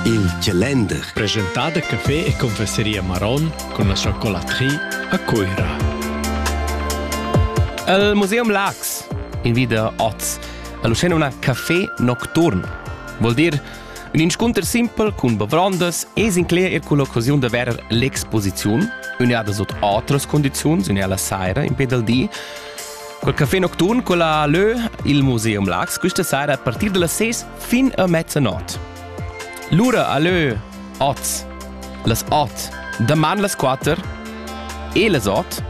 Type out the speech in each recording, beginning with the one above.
Il calender. Presentà da café e confesseria Maron cun la chocolatrie a Cuira. El Museum Lax invida oz a Lucena una café nocturn. Vuol dir un inscunter simpel cun bavrondas e sincler er culla occasiun da verer l'exposiziun, uniada sut outras condizions, unea la saira in pe del di. Col café nocturn con la Lö, il Museum Lax, questa sera a partir delle 6 fin a mezzanot. Lura a lö oz las ot, daman las quatter e las ot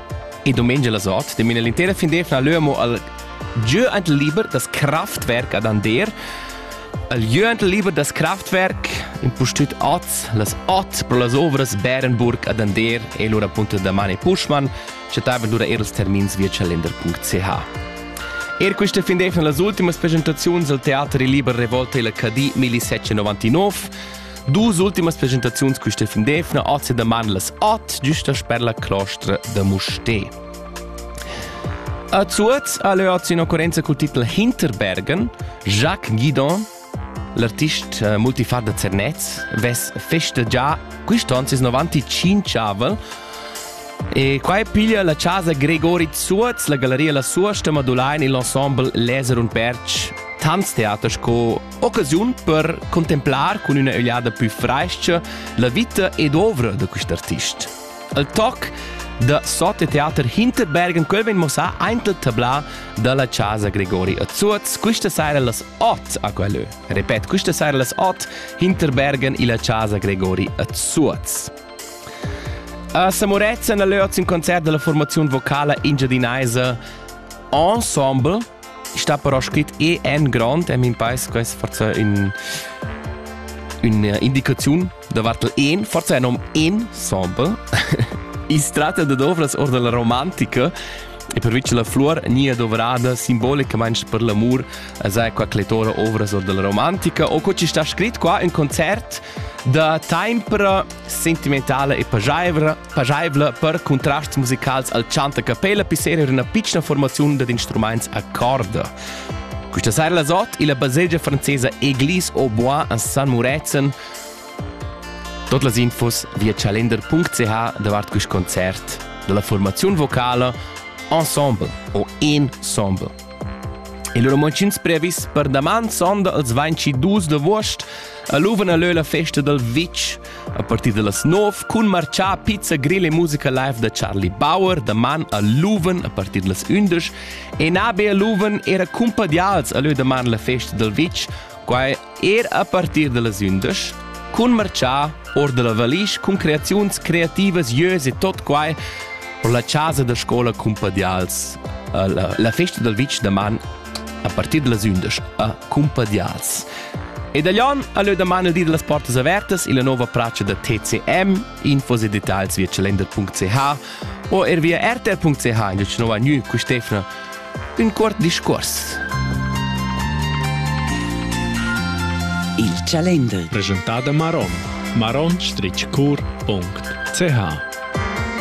e domenica las ot, de mina l'intera fin defna lö amo al giö ant liber das Kraftwerk ad Ander, al giö ant liber das Kraftwerk in pustüt oz las ot pro las ovras Bärenburg ad Ander e lura appunto da Mani Puschmann chattavan lura er ils termins via calender.ch. Er questa fin d'efna las ultimas presentaziuns al Teater Liber Revolta il HD 1799. Dus ultimas presentaziuns questa fin d'efna oggi da man las 8 giusta sper la clostra da Musté. A Zuoz ha leu oggi in occorrenza col titel Hinterbergen, Jacques Guidon L'artist eh, multifar da Zernez vess festa già quist'on sis 95 avel e qua piglia la casa Gregori Zuoz la galleria La Suosta Madulain il ensemble Leser und Berg Tanztheater sco occasiun per contemplar cun üna ögliada più fresca la vita ed ovra da quist artist. El toc da Sote Teater Hinterberg en quel vegn muossà aint il tablà dalla casa Gregori a Zuoz quista saira las 8 a quellö. Repet, quista saira las 8 Hinterbergen illa casa Gregori a Zuoz. A Samuretzen a Löz in concert della formaziun vocala engiadinaisa Ensemble sta però scrit e en grand en mein paes quest forza in una indicazione da vartel en forse nom en sample is tratta de dovras or della romantica e per vice la flor ni è dovrada simbolicamente per l'amor a sai qua clettora ovras or della romantica o co ci sta scrit qua un concert da tempra sentimentala e pageivla, pageivla per contrasts musicals al chant a capella pisser era una piccina formazione dad instruments a corda. Questa sera la zot e la baselgia francesa Église au Bois a San Muretzen. Tot las infos via calender.ch davart quest concert dalla formazione vocale Ensemble o Ensemble. Il romontschins previs per daman sonda els 22 d'avuost aluvan a leu la festa dal vitg a partir da las 9 cun marciar pizza grill e musica live da Charlie Bauer daman a Luven a partir da las 11 e nabe a Luven era cumpadials a leu daman la festa dal vitg quai Er a partir da las undisch cun marchar or da la valisch cun creaziuns creativas ieus e tot quai ho la chasa da scola Cumpadials, eh, la, la festa dal vitg da man a partir da las undisch a Cumpadials. E da Jon ha leu daman il di da las portas avertas illa nova pracha da TCM, infos e details via calender.ch o er via rtr.ch in nova gnü cu Stefna Ün cuort discuors. Il Calender. Presentada Maron. maronstritschcur.ch